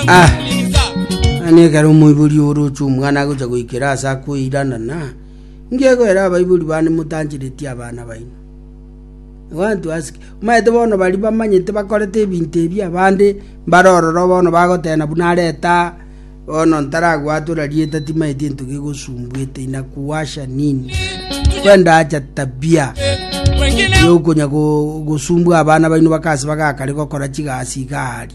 Ah. Ani ekero omoibori oroche omwana agocha goikera ase akoirana na ngegoera abaibori bane motancheretie abana baino wantu asike maete bono bari bamanyete bakorete ebinto ebi abande mbarororo bono bagotena buna areta bono ntaragwatura rieta timaeti ento gegosumbuete inakuwasha nini kwenda acha tabia yokonya go- gosumbua abana baino bakasi bagakare gokora chigasi igari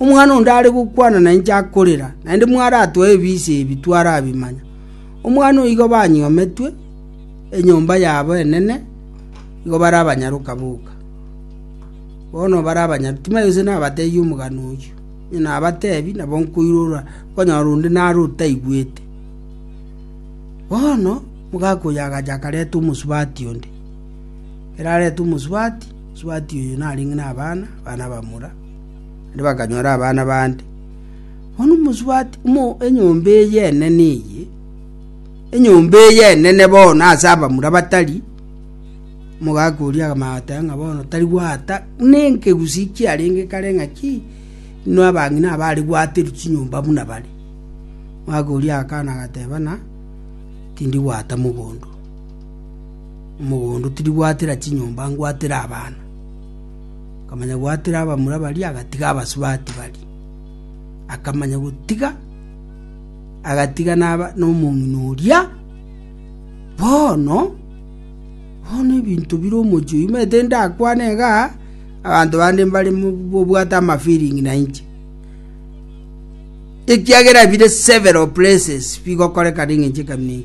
Omwana onde are gokwana na inche akorera, naende mwaratoe ebiise ebi twarabimanya. Omwana oo igo banyometwe enyomba yabo enene, igo bare abanyaroka boka. Bono bare abanyaroka, timanya gose nabateebie omogano oyio. Onye nabateebia, nabo nkoirora, okonyora onde nare otaigwete. Bono omogaka oyo agacha akareta omosubati onde. Ekero areta omosubati, omosubati oyo narenge nabana, abana bamura. naende bakanyora abana bande. Bono mosubati ng'a enyomba eye enene eye, enyomba eye enene bono ase abamura batari, omogaka oria akamanya goteba ng'a bono tari gwata buna enkegusii kiarenge kare ng'aki, inwe abang'ina aba aria gwaterwa chinyomba buna bare. Omogaka oria agakana agateba ng'a tindi gwata mogondo, omogondo tindi gwatera chinyomba ngwatera abana. Akamanyabwatera abamura baria, agatiga abasubati baria. Akamanya gotiga, agatiga naba nomong'ina oria. Bono, bono ebinto bire omochi oyu, mete ndakwane iga, abanto bande mbare mo- bobwate amafiringi na inche. Ekiagera bire several places bigokorekana eng'encho ekamina eye.